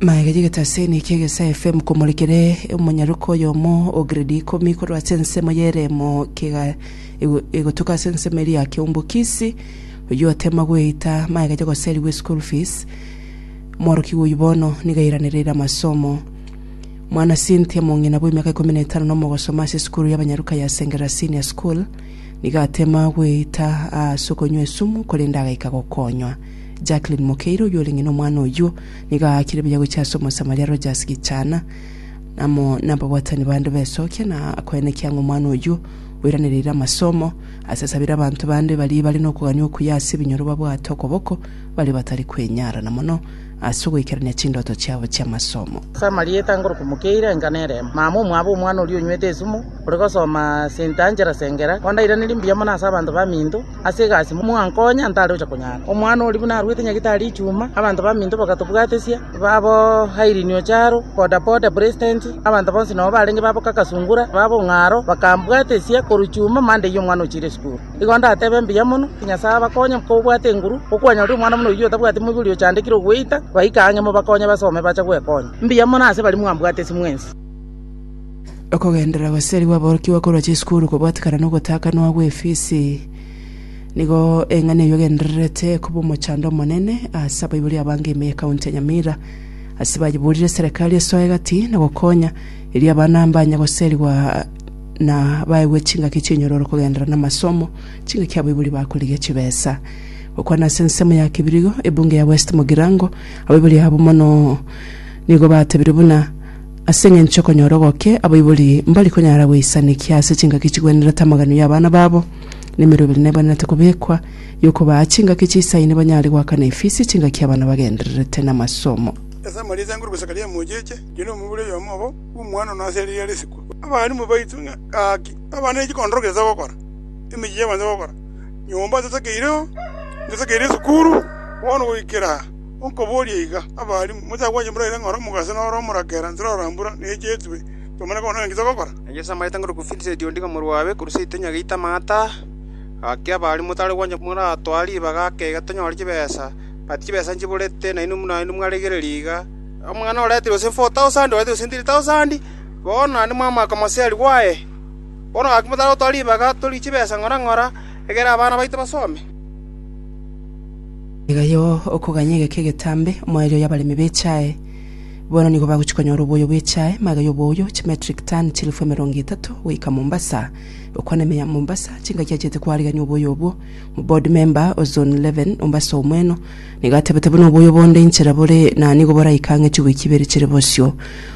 Maegechigete ase eniki egesaa efemu komorekere omonyaroka oyomo o gredi ikomi korwa ase ensemo y'ereemo kega ego- egotoka ase ensemo eria ya keumbokisi, oyio otema gweita maegete goserigwa eschool fees. Omworokigwa oyio bono nigo airanereire amasomo. Mwana Cynthia mong'ina bw'emiaka ikomi na etano na omogosoma ase esukuru y'abanyaroka ya Sengera Senior School, nigo atema gweita aase okonywa esumu korende agaika gokonywa. Jacqueline Mokeire oyio orenge nomwana oyio, nigo aakire buya gochia ase Omosamaria Rogers Gichana amo nababwatani bande b'esokia na koenekia ng'a omwana oyio oiranereire amasomo, ase asabire abanto bande baria bare nokogania okuya ase ebinyoro babwate okoboko baria batari kwenyara, na mono ase ogoikerania chindoto chiabo chi'amasomo. Ase amarieta ngoroku Mokeire enka neremo. Mama omwabo omwana oria onywete esumu, ore gosoma St Angela Sengera, ondairanerie mbuya mono ase abanto baminto. ase egasi, mwankonya ntare gocha konyara. Omwana oria buna arwete nyagitari echuma, abanto baminto bagatobwatesia, babo Irene Ocharo, Boda Boda President, abanto bonsi nabo barenge babo Kaka Sungura, babo Ong'aro, bakambwatesia korwa chuma Monday eye omwana ochire esukuru. Igo ndatebe mbuya mono, ki Nyasae abakonye kobwate enguru, okwanyora omwana buna oyio otabwati moibori ochandekire ogweita, baika ang'e mobakonye basome bache gwekonya. Mbuya mono ase baria mwambwatesi mwensi. Okogenderera goseri gw'aborokigwa korwa chisukuru kobwatikana na ogotaakanwa gw'efisi, nigo eng'ani eyio egendererete koba omochando omonene ase abaibori abange ime ya county ya Nyamira ase bayiburire eserekari esoe gati na gokonya erio abana mbanye goserigwa na baegwe chingaki chinyororo kogenderera na amasomo, chingaki abaibori bakorigia chibesa. Gokwana ase ensemo ya Kibirigo, ebunge ya West Mugirango, abaibori abo mono nigo batebire buna Ase engencho okonyora ogoke, abaibori mbari konyara goisanekia ase chingaki chigwenerete amaganio y'abana babo, na emerwa ebere nebwenerete kobekwa, y'okobaa chingaki chiisaine banyare goaka na efisi chingaki abana bagendererete namasomo. Ase amarieta ya Ngoroku Zakaria Mocheche, John omobori oyomo obo bw'omwana one ase eria riare sikuru, abalimu baito ng'a gaki abana ne chikondoro gete togokora, emechie y'abanto togokora, nyomba totakeireo, ntotakeire esukuru, bono goikera aa. Okoboria iga, abari motagwenereti moraire ng'a oromo gose noro omorakera nse rora mbura nechetwe, tomanye koba naki togokora. Na Yeso amaete ng'a, Ruku Vincent ondiga omorua owe, korwa seito onye geita amaato aa. Gaki abari motare gwancha moratware ribaga ake iga tonyore chibesa, but chibesa nchiborete, nainwe buna naende mwaregereria iga. Omwana oreterwe gose four thousand, oreterwe gose three thousand, bono naende mwamaka omoseri bwaye. Bono gaki motare gotwara ribaga torigie chibesa ng'ora ng'ora, egere abana baito basome. Iga yo okoganya egeka egetambe, omoerio y'abaremi b'echae. Bono nigo bagochia konyora oboyo bw'echae, magega y'oboyo, chimetric tani chilifu emerongo etato, goika Mombasa. Okwana ime ya Mombasa, chingaki achiete koarigania oboyo obwo. Omoboard member o Zone 11, Mombasa omweno, nigo atebete buna oboyo bonde inchera bore na nigo boraika ang'e chiwiiki ibere chire bosio.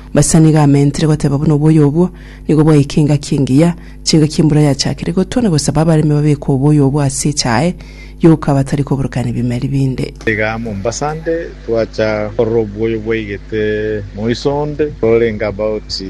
Mombasa nigo amentire goteba buna oboyo obwo nigo bwaika engaki engiya, Chianga chi'embura yachakire gotwa na gosaba abaremi babeke oboyo obo ase echae yoka batari koborokania ebimeri binde. Iga Mombasa nde twacha korora oboyo bwaigete moiso onde ororenge about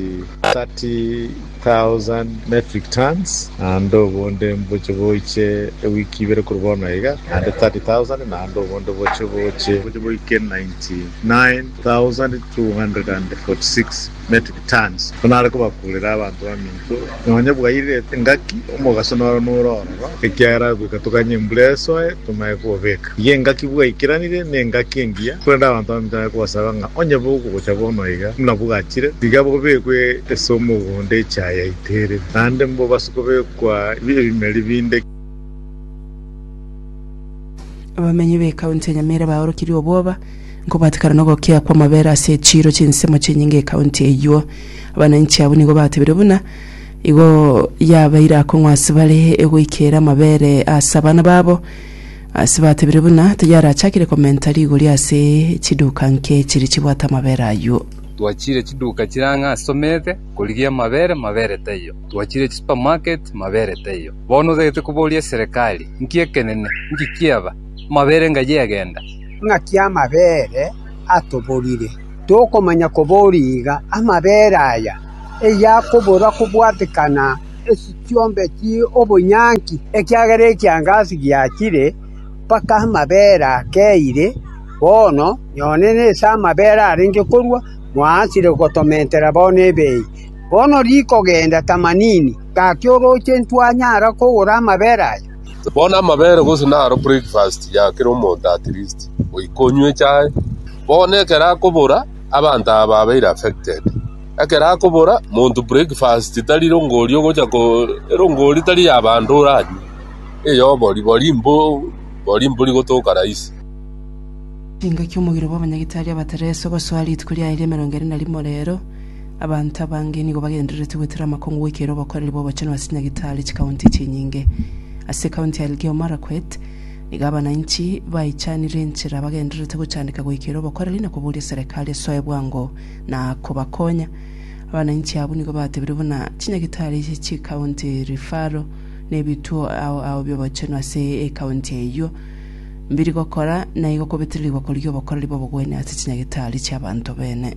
30,000 metric tons naende obonde mboche boiche ewiki ibere korwa bono iga naende 30,000 naende obonde boche boche boiche boike 99,246. metric tons, buna are kobakuurera abanto baminto, nonya bwairirete engaki, omogaso noro nore ororo, ekiagera goika toganye embura esoe, tomae kobobeka. Iga engaki bwaikeranire nengaki engiya, korende abanto baminto nare kobasaba ng'a onye bogocha bono iga buna bwachire, tiga bobekwe ase omogondo echa yaiterire, naende mbobase kobekwa ebimeri binde. Abamenyi b'ekaunti ya Nyamira baorokirie obwoba. Nkobatekana nogokea kw'amabera ase echiiro chinsemo chinyinge ekaunti eyio. Abananchi abwo nigo batebire buna igo yabeire akong'u ase bare egoikera amabere ase abana babo ase batebire buna tayarachakire komenta rigori ase chiduka nke chiri chibwate amabere ayio. Twachire chiduka chire ang'e ase omete korigia amabere, mabere taiyo. Twachire chisupermarket, mabere taiyo. Bono otagete koboria eserekari, Nki ekenene? Nki kiaba? Amabere ngayi egenda? ng'aki amabere atoborire, tokomanya koboria iga, amabere aya eyakobora kobwatekana echiombe chi'obonyanki, ekiagera ekiangasi giachire, mpaka amabere akeire, bono nyone nase amabere arenge korwa mwaachire gotomentera bono ebei. Bono rikogenda tamanini, gaki oroche intwanyara kogora amabere aya? Bono amabere gose naro breakfast ya kera omonto at least goika onywe echae. Bono ekero akobora abanto aba babeire affected. Ekero akobora monto breakfast tari rongori ogocha ko erongori tari ya bande oranywe eya obori bori mbo bori mbori gotoka rahisi. Chingaki omogiro bwa abanyagitari abatereso gosoa rituko riaye ria emerongo ere na rimo rero. Abanto abange nigo bagendererete gwetera amakongo goikera obokoreri bw'obochenu ase Nyagetari chikaunti chinyinge. Ase ekaunti ya Elgeyo Marakwet, nigo abanainchi baichanire enchera bagendererete gochandeka goikera obokoreri na koboria serekari esoe bwango na kobakonya. Abanainchi abwo nigo batebire buna Chinyagetari chie chikaunti, referral, na ebituo ao ao bi'obochenu ase ekaunti eyio mbiri gokora na igo kobetererigwa korigia obokoreri bw'obogwenia ase chinyagetari chi'abanto bene.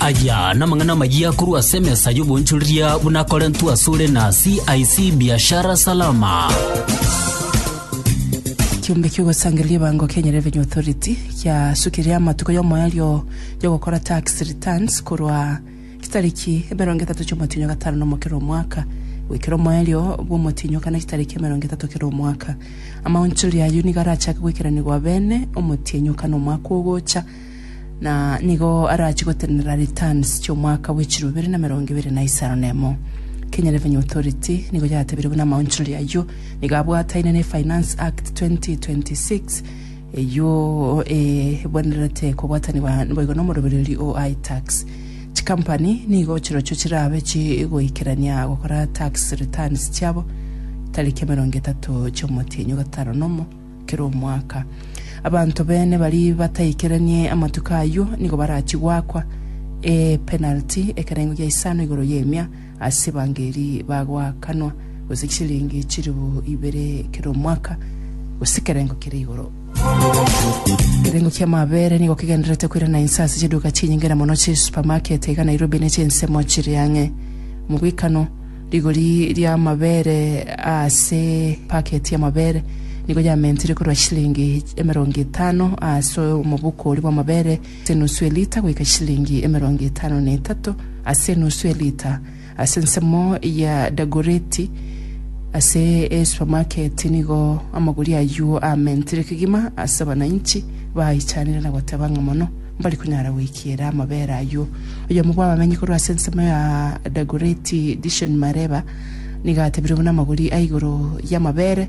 Aya namang'ana amayia korwa ase emesa y'oboonchoreria buna akorentwe asore na CIC Biashara Salama. kiombe kiogosangereria ebango Kenya Revenue Authority kiasukire amatuko y'omoerio y'ogokora tax returns korwa Chitariki emerongo etato chi'omotienyo gatano nomo kera omwaka, goikera omoerio bw'omotienyo okane chitariki emerongo etato kera omwaka. Amaonchori ayio nigo arachake goikeranigwa abene omotienyo okane omwaka ogocha, na nigo arachie gotenenera returns chi'omwaka bwe chiro ibere na emerongo ebere na isano na emo. Kenya Revenue Authority nigo yatebire buna amaonchori ayio nigo abwataine ne Finance Act 2026, Eyio ebwenerete kobwatanigwa boigo nomorobererio o iTax. Chikampani nigo chirochio chirabe chigoikerania gokora tax returns chiabo tariki emerongo etato chi'omotienyi o gatano nomo kera omwaka. Abanto bene bari bataikeranie amatuko ayio nigo barachie goakwa epenalty, ekerengo gia isano igoro y'emia, Ase evangeli bagoakanwa gose chisiringi chilifu ibere kera omwaka, gose ekerengo kere igoro. Ekerengo kia amabere nigo kegendererete koirana inse ase chiduka chinyinge na mono chisupermarket iga Nairobi ne chinsemo chiri ang'e. Mogoikano, rigori ria amabere aase packet ya amabere nigo yamentire korwa chisiringi emerongo etano aase omobuko oria bwa amabere ase enusu elita goika chilingi emerongo etano na etato ase enusu elita, ase ensemo ya Dagoretti ase esupermarket nigo amaguria ayio aamentire kegima ase abananchi baaichanire na goteba ng'a mono mbari konyara goikiera amabera ayio. Oyomo bw'abamenyi korwa ase ensemo ya Dagoretti Dishon Mareba nigo atebire buna amaguri a igoro y'amabere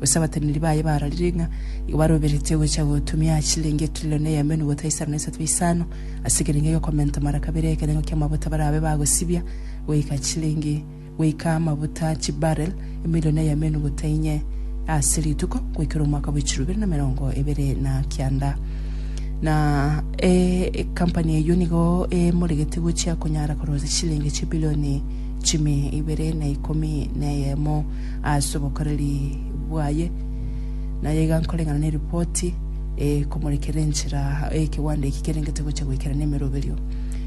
Gose abateneneri baye bararire ng'a nigo baroberetie gocha gotumia chilingi etrilioni eyemo enuguta ya isano na isato ya isano ase ekerengo egekomenta mara kabere ekerengo ki'amabuta barabe bagosibia goika chilingi goika amabuta chibarrel emilioni eyemo enuguta inye ase rituko goikera omwaka bwa echiru ibere na emerongo ebere na kianda na ecompany eyio nigo emoregete gochia konyara korosa chilingi chibilioni chimi ibere na ikomi na eyemo ase obokoreri bwaye, na aiga nkoreng'ana neripoti eye komorekera enchera aa ekegwanda eki kerengete gocha goikera nemeroberio.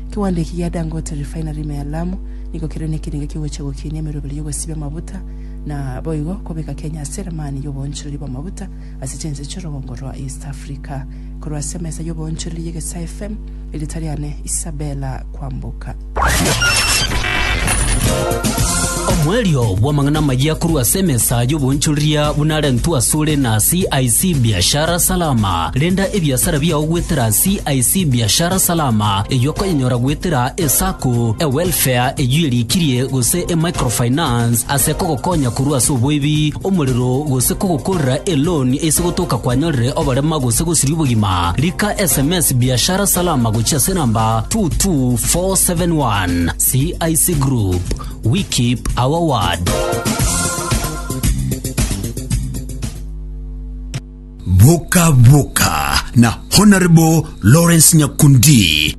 Ekegwanda eki gia Dangote Refinery ime ya Lamu nigo kere nekerenga kegocha gokinia emeroberio yogosibia amabuta na boigo kobeka Kenya ase eramani yoboonchoreri bw'amabuta ase chinse chi'orogongo rwa East Africa. Korwa ase emesa y'oboonchoreri y'egesae FM, erieta riane Isabella Kwamboka. Omwerio bw'amang'ana amayia korwa ase emesa y'oboonchoreria buna arentwe asore na CIC Biashara Salama. Renda ebiasara biao gwetera CIC Biashara Salama eyio okonyenyora gwetera esako, ewelfare eyio erikirie gose emicrofinance ase kogokonya korwa ase oboibi Omorero gose kogokorera eloan ase gotoka kwanyorire oborema gose gosiria obogima, rika sms Biashara Salama gochia ase namba 22471. CIC Group, we keep our word. Boka Boka na Honorable Lawrence Nyakundi.